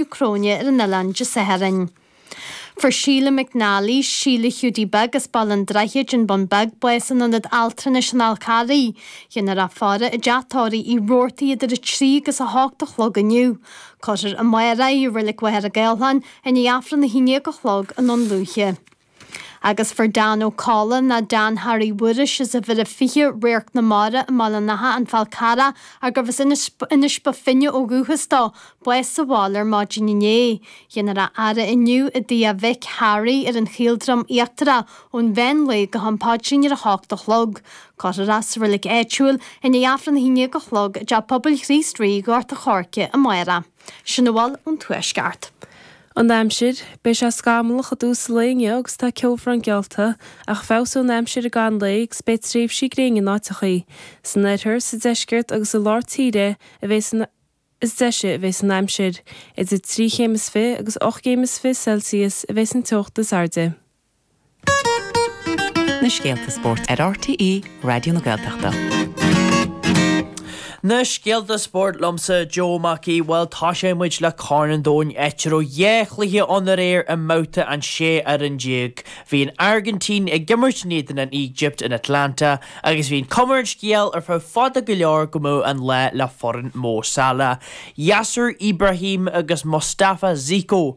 Cróine ar an oileán Dé Sathairn. Fuair Sheila McNally, Sheila Hiúdaí Beag as Baile an Droichid, An Bun Beag, bás in Ionad Altranais an Fháil Charraigh. Dhéanfar a faire i dteach tórraimh Uí Rabhartaigh idir 3 agus 8 a chlog inniu. Cuirfear amárach í i Reilig Mhachaire Gathlán, i ndiaidh Aifreann a haon déag a chlog i nDún Lúiche. agus fuair Dan Ó Colla nó Dan Harry Mhuiris as uimhir a 20 Radharc na Mara i mBaile an Átha, An Fál Carrach, arbh as Inis Bó Finne ó dhúchas dó, bás sa bhaile ar maidin inné. Dhéanfar a fhaire inniu i dtigh a mhic Harry ar an Chaoldroim Íochtarach ón mheán lae go ham paidrín ar a hocht a chlog. Cuirfear é sa reilig áitiúil, i ndiaidh Aifreann a haon dhéag a chlog, i dTeach Pobail Chríost Rí, Ghort a' Choirce, amárach. Sin a bhfuil ón Tuaisceart. An aimsir, Beidh sé scamallach i dtús an lae inniu agus tá ceobhrán geallta, ach feabhsóidh an aimsir i gcaitheamh an lae agus beidh tréimhsí gréine in áiteachaí. San oirthear, sa deisceart agus i lár tíre a bheas an is deise a bheas an aimsir. Idir trí chéim is fiche agus ocht gcéim is fiche Celsius a bheas an teocht is airde. na scéalta spóirt ar RTÉ Raidió na Gaeltachta. Na scéalta spóirt liomsa, Joe Mac Aoidh, bhuel tosóidh muid le Corn an Domhain áit a raibh dhá chluiche ann aréir i mbabhta an 16 fhoireann. Bhí an Airgintín ag imirt in éadan an Éigipt in Atlanta agus bhí an cuma ar an scéal ar feadh fada go leor go mbeadh an lá le foireann Mo Salah, Yasser Ibrahim agus Mostafa Ziko.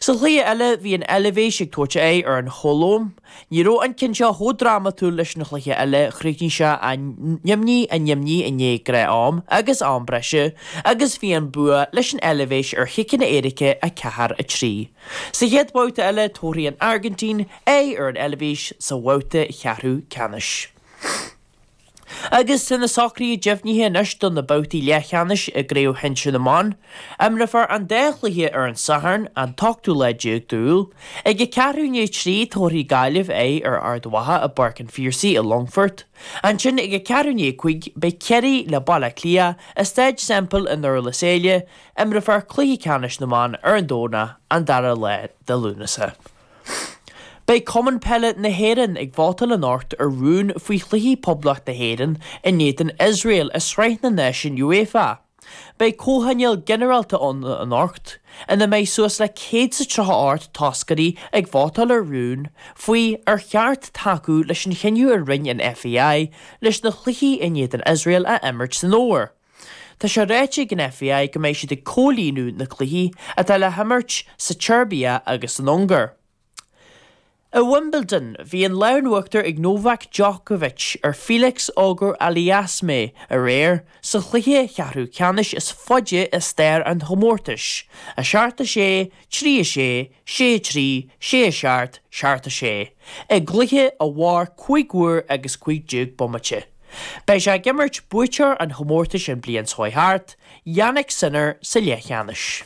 Sa chluiche eile, bhí an Eilvéis ag tabhairt aghaidh ar an Cholóim. Ní raibh an ceann seo chomh drámatúil leis an chluiche eile, chríochnaigh sé 0, 0 i ndiaidh gnáth-am agus am breise, agus bhí an bua leis an Eilvéis ar chiceanna éirice 4, 3. Sa chéad bhabhta eile, tabharfaidh an Airgintín aghaidh ar an Eilvéis sa bhabhta cheathrú ceannais. Agus tá na socruithe deimhnithe anois do na babhtaí leathcheannais i gCraobh Shinsir na mBan. Imreofar an dá chluiche ar an Satharn, an t-ochtú lá déag d'Iúil. Ag a ceathrú i ndiaidh a trí, tabharfaidh Gaillimh aghaidh ar Ard Mhacha i bPáirc an Phiarsaigh i Longfort. Ansin ag a ceathrú i ndiaidh a cúig, beidh Ciarraí le Baile Átha Cliath i Staid Semple i nDurlas Éile. Imreofar cluiche ceannais na mban ar an Domhnach, an dara lá de Lúnasa. Beidh Cumann Peile na hÉireann ag vótáil anocht ar rún faoi chluichí Phoblacht na hÉireann in éadan Iosrael i Sraith na Náisiún UEFA. Beidh comhthionól ginearálta ann anocht ina mbeidh suas le céad is a tríocha hocht toscairí ag vótáil ar rún faoi ar cheart tacú leis an chinneadh a rinne an FAI leis na cluichí in éadan Iosrael a imirt san Fhómhar. Tá sé ráite ag an FAI go mbeidh siad ag comhlíonadh na cluichí atá le himirt sa tSeirbia agus san Ungáir. I Wimbledon, bhí an lámh in uachtar ag Novak Djokovic ar Felix Auger-Aliassime aréir sa chluiche ceathrú ceannais is faide i stair an chomórtais, 7-6, 3-6, sé a trí, sé a seacht, seacht a sé, i gcluiche a mhair cúig uair agus cúig déag bomaite. Beidh sé ag imirt buaiteoir an chomórtais an bhliain seo thart, Jannik Sinner sa leathcheannais.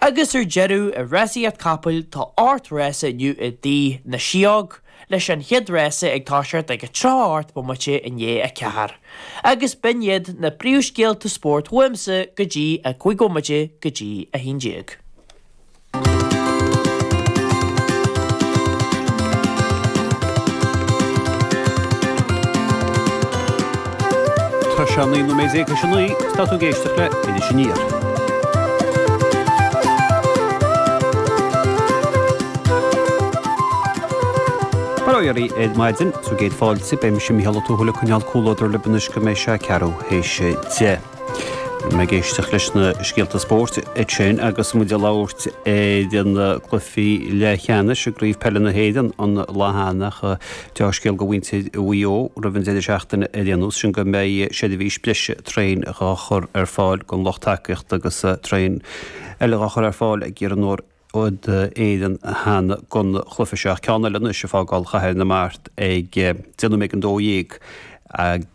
Agus ar deireadh, i rásaíocht capaill, tá ocht rása inniu i dTigh na Sióg, leis an chéad rása ag toiseacht ag 38 bomaite i ndiaidh a ceathair, agus b'in iad na príomhscéalta spóirt uaimse go dtí 5 bhomaite go dtí a haon déag. Tá sé naoi nóiméad déag tar éis a naoi. Tá tú ag éisteacht le Iris Aniar. Bail ó Dhia oraibh ar maidin is bhur gcéad fáilte, beidh mise, Mícheál Ó Tuathail, ag coinneáil comhluadar libh anois go mbeidh sé a ceathrú théis a deich. Bhí mé ag éisteacht leis na scéalta spóirt ansin agus muid ag labhairt ar na cluichí leathcheannais i gCraobh Peile na hÉireann an lá cheana. Deá-scéal do mhuintir Mhaigh Eo roimh an deireadh seachtaine ar aon nós, sin go mbeidh seirbhís breise traein dhá chur ar fáil don lucht tacaíochta agus traein eile dhá chur ar fáil ag Iarnród Éireann cheana gon chluiche seo ach ceann eile anois ag fágáil Chathair na Mart ag déanamh ag 12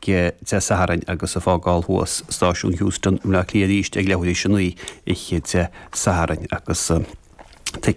Dé Sathairn agus ag fágáil thuas Stáisiún Heuston i mBleá Cliath arís ag leathuair éis a naoi oíche Dé Sathairn agus ticéid